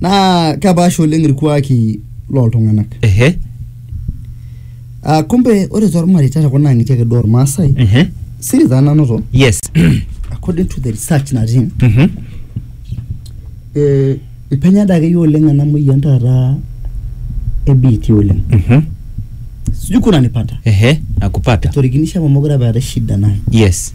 naa kepaasha oleng irkuaki loltung'anak ehe uh, kumbe ore tormareita tekuna ang'itie ake duo ormaasai ehe siri taa nanoto yes according to the research natii Mhm. eh, ipenya dake yie oleng ena moyian taata ebiitia oleng Mhm. sijui kuna nipata ehe nakupata etorikinishe amu mokure apa eetae shida naye yes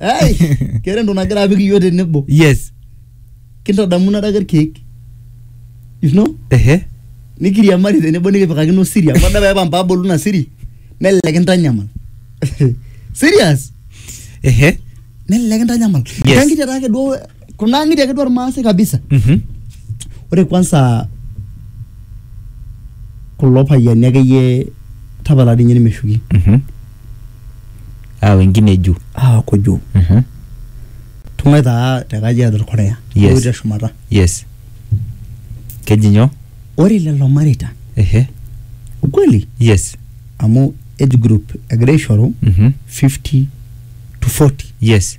Ai, keeta entoki nagira apik iyiook tenebo. yes Kintadamu nadake irkeek. You know? ehe Nikiriamari tenebo nikipikakino siri. Amu adamu apa mpabolu ina siri. Nelelek kintanyamal. Serious? ehe Nelelek kintanyamal. Yes. Kankiti taake duo kuna ng'iti ake duo irmaasai kabisa Mhm. ore kwanza kulo payiani akeyie tapala dii ninye nimeshuki Mhm. Ah, wengine juu. aaku juu Mhm. tung'ai taa te kajiado irkorea Yes. Ewueji teshumata Yes. Keji nyoo? ore lelo mareita Ehe. ukweli Yes. amu age group egira aishoru Mhm. 50 to 40 Yes.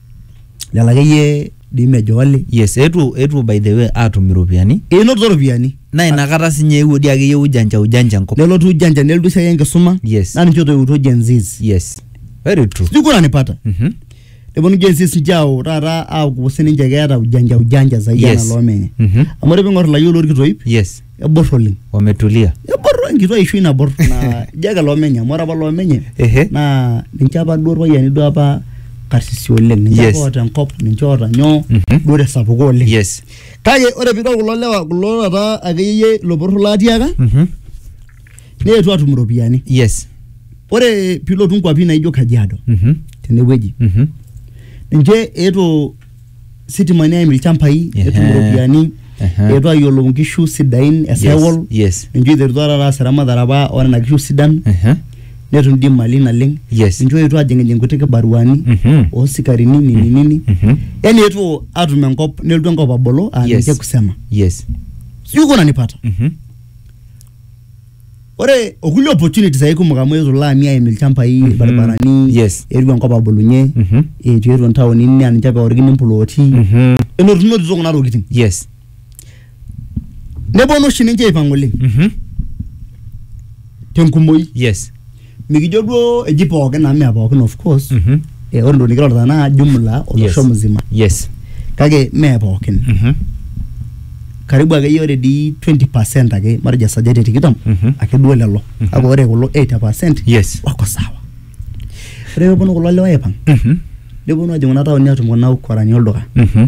lelo akeyie dii mejo ole yes eetuo eetuo by the way aatum iropiyiani enotito iropiyiani naa inakata sinye eewuo dii akeyie ujanja ujanja enkop nelotu ujanja nelotu esiai enkisuma Yes. naa ninche otoiwutuo Gen Zs yes very true sijui kuna nipata Mhm. neponu Gen Zs ninche aau taata aaku sininche keeta ujanja ujanja zaidi Yes. enaa loomenye Mhm. amu ore piing'or ilayiok lorkitoip yes ebor oleng wametulia ebor enkitwa ishu ina bor naa ijo ake loomenye amu ore apa loomenye Ehe. naa ninche apa duo irpayiani duo apa karsisi oleng ninche Yes. apa oota enkop ninche oota nyoo Mhm. duo tesapuko oleng yes kake ore piidol kulo lewa kulo taata akeyie ilo poror laatiaka Mhm. neetuo atum iropiyiani yes ore piilotu nkuapi naijo kajiado Mhm. tenewueji Mhm. ninche eetuo sitimani aim ilchambai netum Ehe. iropiyiani Ehe. etu ayiolou inkishu sidain esaiwol Yes, yes. ninche oiterutua taata aas eramatare apa onena kishu sidan Ehe. netum dii imali naleng Yes. ninche oetuo ajing'ijing kuti kibaruani Mhm. osikarini nini nini Mhm. yani etuo atum enkop nelotu enkop abolo aa Yes. ninche kusema Yes. sijui kuna nipata Mhm. ore okulie opportunities ake kumok amu eetuo ilaami aim ilchambai Mhm. irbaribarani Yes. eetuo enkop abulunye Mhm. eetuo eetuo intaonini naa ninche apa eorikini implooti Mhm. enotunotito kuna tokitin yes neponu oshi ninche aipang oleng Mhm. tenkumoi yes mikijo duo eji pookin amu mee pookin of course Mhm. eh, ore entoki nikirorita naa jumla olosho Yes. mzima yes kake mee pookin Mhm. karibu akeyie ore dii 20 percent ake matejo esajati e tikitam Mhm. ake duo lelo Mhm. kake ore kulo 80 percent yes wako sawa ore peponu kulo lewa aipang Mhm. neponu ajing kuna taoni atum kuna ukorani olduka Mhm.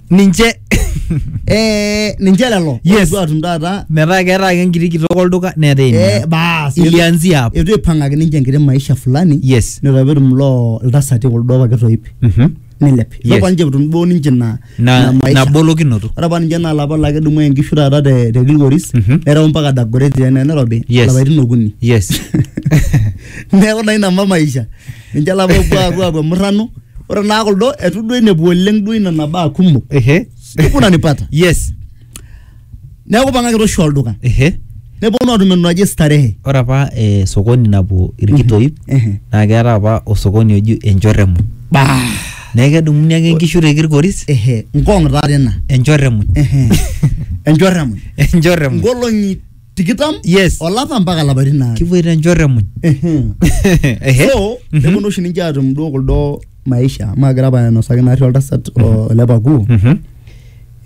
ninche Eh, ninche lelo Yes. Ore duo atum taata metaa keeta ake enkiti kitok olduka neeta eh, ina baas ilianzia hapo eitu eipang'aki ninche enkiti maisha fulani yes netaa petum loo iltasati kuldo apa kitoip Mhm. nilep Yes. ipapa ninche etum duo ninche ina na ina maisha. nabolokinoto ore apa ninche naa lapa lake dumu enkishu taata te te Kilgoris Mhm. nereu mpaka Dagoretti ene Nairobi Yes. lapaitin okuni yes neeku naa ina mpa maisha ninche ilapa opuo apuo apuo murrano ore naa kuldo etu duo inepu oleng duo ina nabaa kumok ehe kuna nipata yes neeku pang'aki toshi olduka ehe neponu atum entoki naji starehe ore apa eh, sokoni napuo irkitoip Ehe. naa keeta apa osokoni oji enchorremu bah neeku kedumuni ake inkishu te kirkoris ehe nkong taata ina enchorremu ehe enchorremu enchorremu nkolong'i tikitam Yes. olapa mpaka lapaitin aare kipuoito enchorro emuny Ehe. Ehe. so Mhm. neponu oshi ninche atum duo kuldo maisha maagira apa ainosaki naarri oltasat o- ole pakuu Mhm.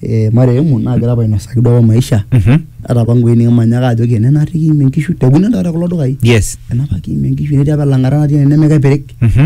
eh, marehemu naagira apa ainosaki duo apa maisha Mhm. ata apa ngwei nikimanyaka ajo kene naarri kiimie nkishu tekune taata kulo dukai yes enapa kiimie nkishu netii apa elang'ata natii ene nemekepirik Mhm.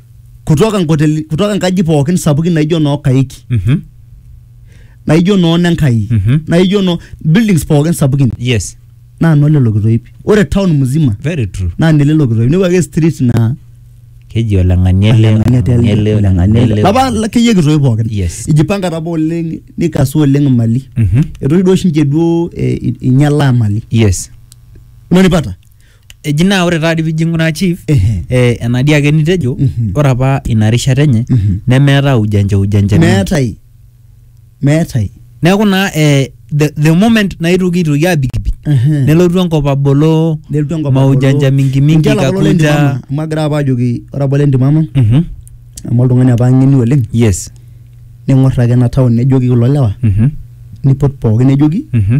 kutoka nkoteli kutoka nkaji pookin sapukin naijo noo kaiki Mhm. naijo noo nenkai Mhm. naijo noo buildings pookin sapukin yes naa noo lelo kitoip ore town mzima very true naa nelelo kitoip nepuo ake street naa keji oleng'ani ele oleng'ania oleng'ani ele tele, oleng'ani oleng'ania ele. ele. lapa la- keyie kitoip pookin Yes. ijipanga tapa oleng nikasu oleng imali Mhm. etoki duo oshi ninche duo eh, i- inyalaa imali yes unanipata eji naa ore taadi pijo ing'uraa chief Ehe. eh, enadi ake nitejo Mhm. ore apa ina rishata enye Mhm. nemeeta ujanja ujanja mingi. meetai meetai neeku naa eh, the, the moment naitoki aitoki abikibik Ehe. nelotu enkop abolo nelotu enkop maujanja abolo. mingi mingi Ninche lapa lolenti kakuja mama, amu agira apa ajoki ore apa olenti mama Mhm. amu oltung'ani apa ng'eni oleng yes ning'or ake ena town nejoki kulo lewa Mhm. nipot pookin nejoki Mhm.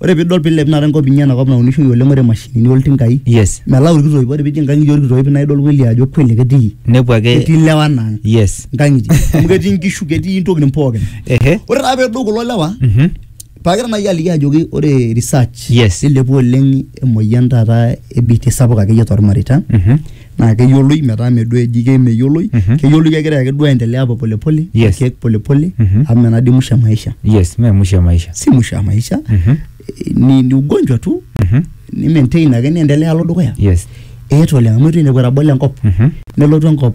Ore pidol pilep taata enkop inyi enakop naunishoi oleng ore mashinini oltinkai yes melau ilkitoip ore pijing inkang'itie olkitoip naa idol kweli ajo kweli ketii nepuo ake ketii ilewa naa ang yes inkang'itie amu ketii inkishu ketii intokitin pookin ehe ore taa pedou kulo lewa mhm paagira naaji aliki ajoki ore research Yes. nilepua oleng emoyian taata e biitia sapuk akeyie tormareita mhm naa keyioloi metaa mme duo eji kemeyioloi Mhm. keyioloi kegira ake duo aendelea hapo polepole Yes. ake polepole Mhm. amu ina dii musho e maisha yes mee mwisho ya maisha si musho ya maisha Mhm. eh, ni, ni ugonjwa tu Mhm. ni maintain ake niendelea alo dukuya yes eetu oleng amu etu inepu etabolo enkop Mhm. nelotu enkop